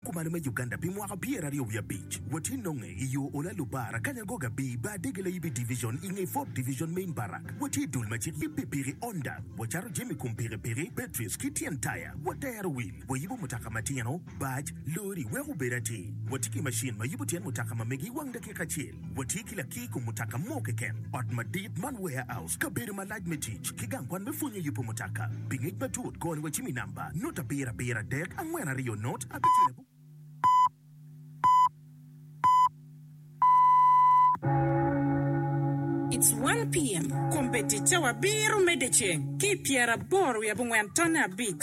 Kumalo me Uganda pi mwaka pyeraryo wiye abic watye nonge i yo Ola Lubara kanya goga bi bar dege laib i Division i nge Fourth Division Main Barrack. Watye i dul macik yib pikipiki Honda, wacato jami i kom pikipiki, batteries ki tyen taya, watero wil, wayibo mutoka matino, bac, lori weko obed atir. Watye ki macin ma yubo tyen mutoka ma mege i wang dakika acel. Watye ki lakir i kom mutoka mo keken. Ot madit man warehouse. Kabedo malac me tic ki gang kwan me pwonyo i yubo mutoka. Pi ngec matut, kony wacim i namba, nut abiro abiro adek angwen aryo nut abicel abongwar abongwar. It's one PM, Kombeddi cawa abiro medde ceng ki i pyeraboro wiye abongwen tonne abic.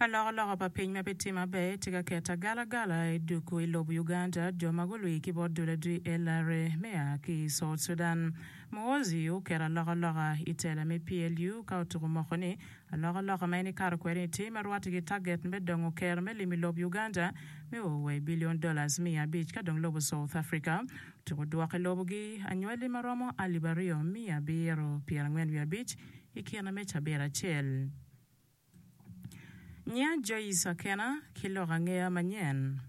Alokaloka pa piny ma pe tye maber tye ka keto agalagala i duku i lob Uganda jo ma gulwi ki bot dul adwi LRA me a ki i South Sudan. Muhoozi oketo alokaloka i tela me PLU ka otuko moko ni alokaloka ma en ikato kwede ni tye ma rwate ki taget me dongo ker me limo i lob Uganda me o wa i billion dollars miya abic ka dong lobo South Africa otuko dwoko i lobo gi anywali ma romo alip aryo miya abiro pyerangwen wiye abic i kine me cabit acel. Nya Joyce Akena ki lok angeya manyen.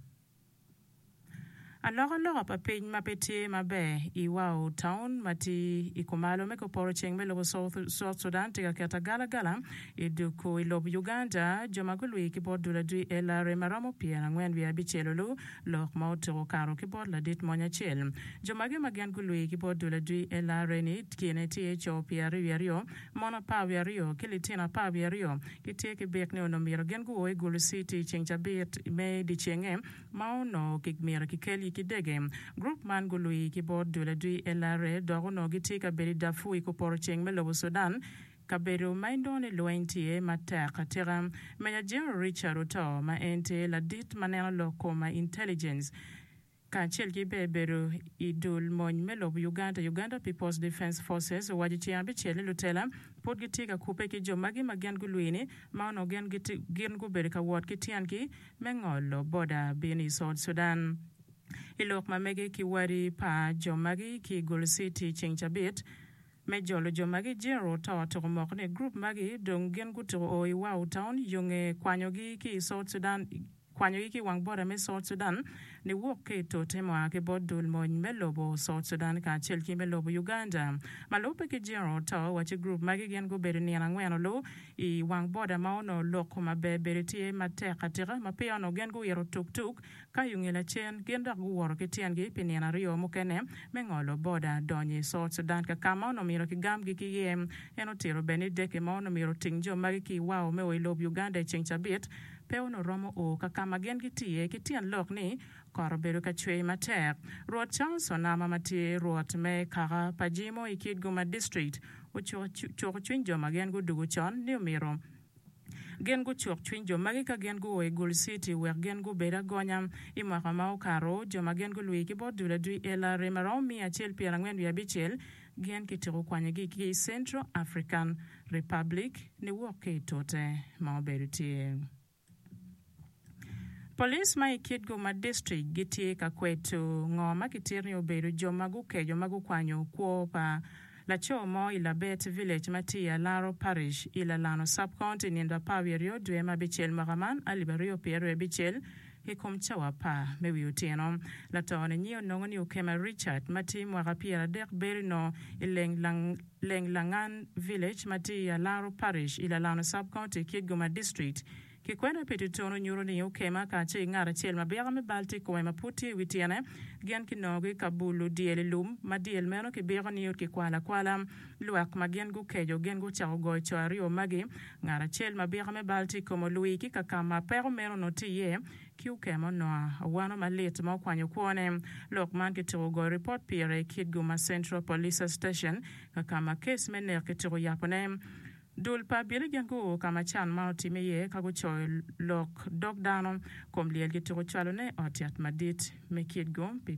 Alokaloka pa piny ma pe tye maber i Wau taun ma tye i kumalo me koporo ceng me lobo South Sudan tye ka keto agalagala i duku i lob Uganda jo ma gulwi ki bot duladwi LRA ma romo pyer angwen wiye abicel olu lok ma otuku okato ki bot ladit mony acel. Jo magi ma gin gulwi ki bot duladwi LRA ni kine tye co pyer aryo wiye aryo Mon apar wiye aryo ki litino apar wiye aryo gitye ki byek ni onongo myero gin guo i Gulu Citi i ceng cabit me dyecenge ma onongo myero kikelgi ki dege. Gurup man gulwii ki bot dul adwi LRA dok onongo gitye ka bedo i Darfur i Kuporoceng me lobo Sudan, kabedo ma inongo ni lweny tye matek atika. Meja General Richard Otoo ma en tye ladit ma neno lok kom ma intelligence, kacel ki bene bedo i dul mony me lobo Uganda, Uganda People's Defence Forces, owaco ceng abicel ni lutela pud gitye ka kubbe ki jo magi ma gin gulwi ni ma onongo gin gin gubedo ka wot ki tyengi me ngolo boda bino i South Sudan. I lok ma mege ki wadi pa jo magi ki i Gulu City ceng cabit me jolo jo magi, General Ototo omoko ni group magi dong gin gutuko o i Wau Town yonge kwanyogi ki i South Sudan. kwanyogi ki i wang bota me South Sudan niwok ki i tote mua ki bot dul mony me lobo South Sudan kacel ki me lobo Uganda. Ma lubbe ki General Too wa ci group magi gin gubedo nino angwen olu i wang boda ma onongo lok kuma ber bedo tye matek atika ma peya onongo gin guito tuk tuk ka yunge lacen gin dok guwoto ki tyengi pi nino aryo mukene me ngolo boda donyo i South Sudan kakama onongo myero ki gamgi ki iye. En otito bene ni deke ma onongo myero oting jo magi ki i wao me o i lob Uganda i ceng cabit Pe onongo romo o ka ka ma gin gitiye ki tyen lok ni kot obedo ka cwer matek. Rwot Charles Onama ma tye rwot me kaka pa Jimo i Kitgum-a District ocuko cuko cwiny jo ma gin gudugo con ni omyero gin gucuk cwiny jo magi ka gin guo i Gul City wek gin gubed agonya. I mwaka ma okato, jo ma gin gulwir ki bot dul adwi LRM aromo miya acel pyerangwen wiye abicel, gin kityeko kwanyogi ki i Central African Republic niwok ki i tute ma obedo tye. Police ma i Kitgum District gitye ka kweto ngo ma kitito ni obedo jo ma gukeco ma gukwanyo kwo pa laco mo i Labet Village ma tye i Alaro Parish i Lalano Sub-County nino apar wiye aryo dwe ma abicel mwaka man alip aryo pyeraryo abicel I kom cawa apar me wi otyeno, lato-ni nyi onongo ni okema Richard ma tye mwaka pyeradek berino i Lenglangan Village ma tye i Alaro Parish i Lalano Sub-County ki Goma District. Kikwena pi tutunu nyuto ni okema ka ce ngat acel ma bika me bal tye i kome ma pud tye i wi tyene. Gin kinongogi ka bulo dyel i lum, ma dyel meno kibiko ni okikwalo akwala. Lwak ma gin gukeco gin gucako goyo co aryo magi, ngat acel ma bika me bal tye i kom olwi ki ka ka ma peko meno onongo tye iye ki okemo nua awano malit ma okwanyo kwone. Lok man kituko goyo ripot pire i Kitgum-a Central Police Station ka ka ma kes me nek kituko yapone. Dul pa abili gin guo ka ma can man otimme iye ka gucoyo lok dog dano kom lyel kituko cwalone i ot yat madit me Kitgum pi